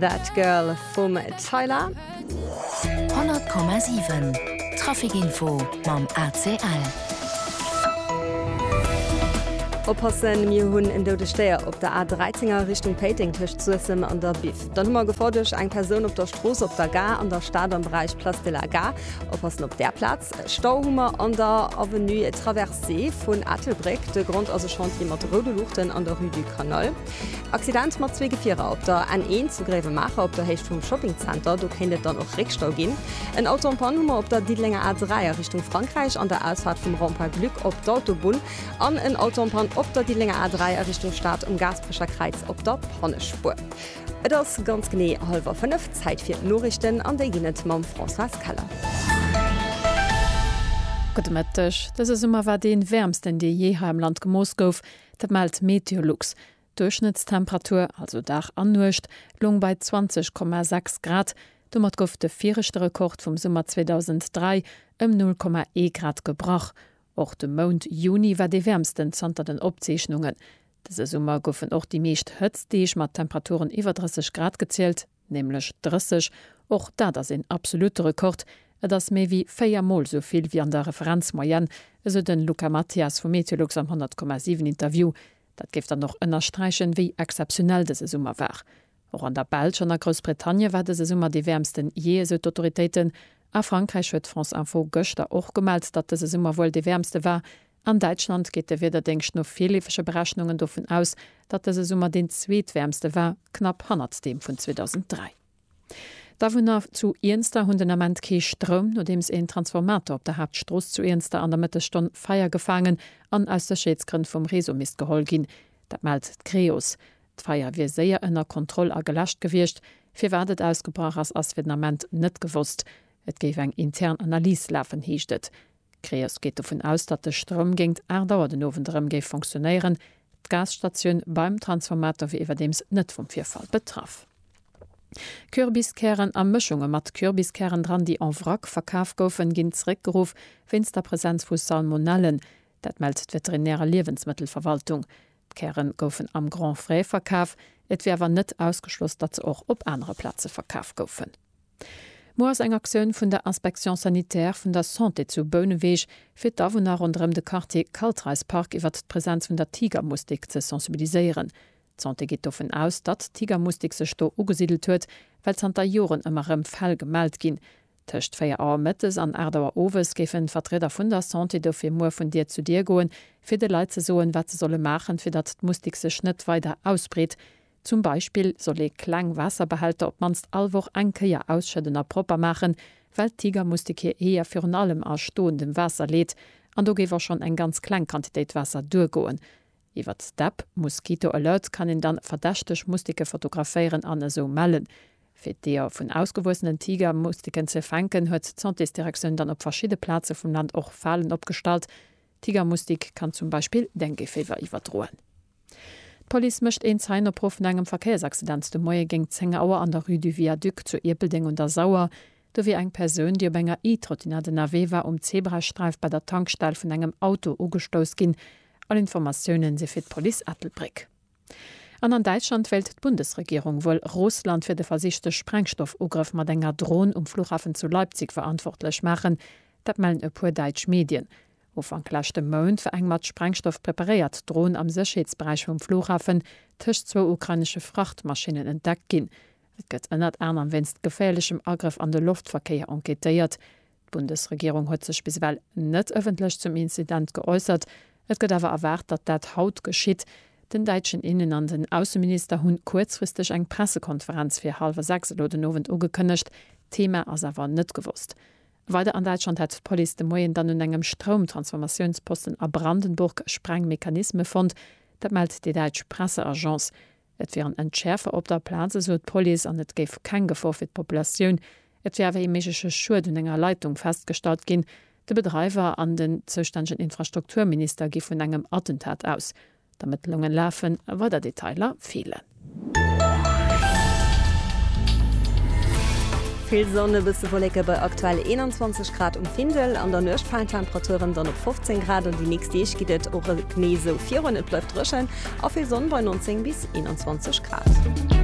That Girl vum Tyla. 100,7 Trafikinfo mam ACL. Oppassen, mir hunn en doude Stéier op der A13 a Richtung Péiteng tëscht Suessem an der Biff. Dann hu mer Gefor duerch eng Persoun op der Strooss op der Gare an der Stad am Beräich Place de la Gare. Oppassen op där Plaz. Stau hu mer an der Avenue Traversée vun Ettelbréck. De Grond ass e Chantier mat roude Luuchten an der Rue du Canal. Accident mat zwee Gefierer op der N1 zu Gréiwemaacher op der Héicht vum Shoppingzenter. Do kéint et dann och Réckstau ginn. En Auto am Panne hu mer op der Diddelenger A3 a Richtung Frankräich an der Ausfaart vum Rond-Point Glück op d'Autobunn. An en Auto am Panne op der Diddelenger A3 a Richtung Stad um Gaasperecher Kräiz op der Pannespuer. Et ass ganz genee hallwer 5, Zäit fir d'Noriichten an déi ginn et mam Françoise Keller. Gudde Mëtteg. Dëse Summer war dee wäermsten, dee jee hei am Land gemooss gouf. Dat mellt d'Meteolux. D'Duerchschnëttstemperatur, also Dag an Nuecht, loung bei 20,6 Grad. Domat gouf de viregte Rekord vum Summer 2003 ëm 0,1 Grad gebrach. Och de Mount Juni war dee wäermsten zanter den Opzeechnungen. Dëse Summer goufen och déi meescht Hëtztdeeg mat Temperaturen iwwer 30 Grad gezielt. nämlech 30, och dat ass een absolute Rekord, et ass méi wéi véier Mol esou vill wéi an der Referenzmoyenne, esou de Luca Mathias vu Meteolux am 100,7 Interview. Dat géif dann och ënnersträichen, wéi exzeptionell dëse Summer war. Och an der Belsch an a Groussbritannie war dëse Summer dee wäermsten jee, esou d'Autoritéiten. A Frankräich huet France Info gëschter och gemellt, datt dëse Summer wuel dee wäermste war, An Däitschland geet de Wiederdéngscht no virleefege Berechnungen dovun aus, datt dëse Summer deen zweetwäermste war, knapp hannert deem vun 2003. D'Awunner zu Iernster hunn den Ament kee Stroum, nodeems een Transformator op der Haaptstrooss zu Iernster an der Mëttesstonn Feier gefaangen an aus Sécherheetsgrënn vum Réseau misst geholl ginn. Dat mellt d'Creos. D'Feier wier séier ënner Kontroll a geläscht gewiescht. Firwat et ausgebrach ass, ass fir den Ament net gewosst. Et géif eng intern Analys lafen, heescht et. D'Creos geet dovun aus, datt de Stroum géingt 8 Auer den Owend erëm géif fonctionéieren. D'Gasstatioun beim Transformator wier iwwerdeems net vum Virfall betraff. Kürbiskären a Mëschunge mat Kürbiskären dran, déi en vrac verkaf goufen, ginn zeréckgeruff wéinst der Presenz vu Salmonellen. Dat mellt d'Veterinär a Liewensmëttelverwaltung. D'Käre goufen am Grand Frais verkaf, et wier awer net ausgeschloss, datt se och op anere Plaze verkaf goufen. Muer ass eng Aktioun vun der Inspection sanitaire vun der Santé zu Bouneweg, fir d'Awunner ronderëm de Quartier Kaltreispark iwwert d'Presenz vun der Tigermustik ze sensibiliséieren. D'Santé geet dovun aus, datt d'Tigermustik sech do ugesidelt huet, well zanter Joren ëmmer erëm Fäll gemellt ginn. Tëscht 4 Auer mëttes an 8 Auer owes géifen d'Vertrieder vun der Santé dofir muer vun Dier zu Dier goen, fir de Leit ze soen, wat se solle maachen, fir datt d'Mustik sech net weider ausbreet. Zum Beispill soll ee kleng Waasserbehälter op d'mannst all Woch eng Kéier ausschëdden a propper maachen, well d'Tigermustik hir Eeër virun allem a stoendem Waasser leet, an do géif och schonn eng ganz kleng Quantitéit Waasser duergoen. Iwwert d'App Mosquito Alert kann een dann verdächteg Mustike fotograféieren an esou mellen. Fir d'Eeër vun ausgewuessenen Tigermustiken ze fänken, huet d'Santésdirektioun dann op verschidde Plaze vum Land och Falen opgestallt, Tigermustik kann zum Beispill Dengueféiwer iwwerdroen. D'Police mécht een Zeienopruf no engem Verkéiersaccident de Moie géingt 10 Auer an der Rue du Viaduc zu Ierpeldeng un der Sauer. Do wier eng Persoun, déi op enger E-Trottinette ënnerwee war, um Zebrasträif bei der Tankstell vun engem Auto ugestouss ginn. All Informatiounen si fir d'Police Ettelbréck. An an Däitschland wéilt d'Bundesregierung wuel Russland fir de versichte Sprengstoffugrëff mat enger Dron um Fluchhafen zu Leipzig verantwortlech maachen. Dat mellen e puer däitsch Medien. Ufank leschte Mount war eng mat Sprengstoff preparéiert Dron am Sécherheetsberäich vum Fluchhafen tëscht zwou ukrainesche Frachtmaschinnen entdeckt ginn. Et gëtt ënnert anerem wéinst geféierlechem Agrëff an de Loftverkéier enquêtéiert. D'Bundesregierung huet sech bis ewell net ëffentlech zum Incident geäussert. Et gëtt awer erwaart, datt dat haut geschitt. Den däitschen Innen an den Ausseminister hunn kuerzfristeg eng Pressekonferenz fir hallwer 6 elo den Owend ugekënnegt. D'Thema ass awer net gewosst. Weider an Däitschland hätt d'Police de Moien dann un engem Stroumtransformatiounsposten a Brandenburg Sprengmechanisme fonnt. Dat mellt déi däitsch Presseagence. Et wier en Entschäerfer op der Plaz, esou d'Police, an et géif keng Gefor fir d'Populatioun, et wier awer ee méigleche Schued un enger Leitung festgestallt ginn. De Bedreiwer an den zoustännegen Infrastrukturminister gi vun engem Attentat aus. D'Ermëttlunge lafen, weider Detailer feelen. Vill Sonn, e bësse Wolleke bei aktuell 21 Grad um Findel. An der Nuecht falen d'Temperaturen dann op 15 Grad an déi nächst Deeg geet et och genee esou virun. Et bleift dréchen a vill Sonn bei 19 bis 21 Grad.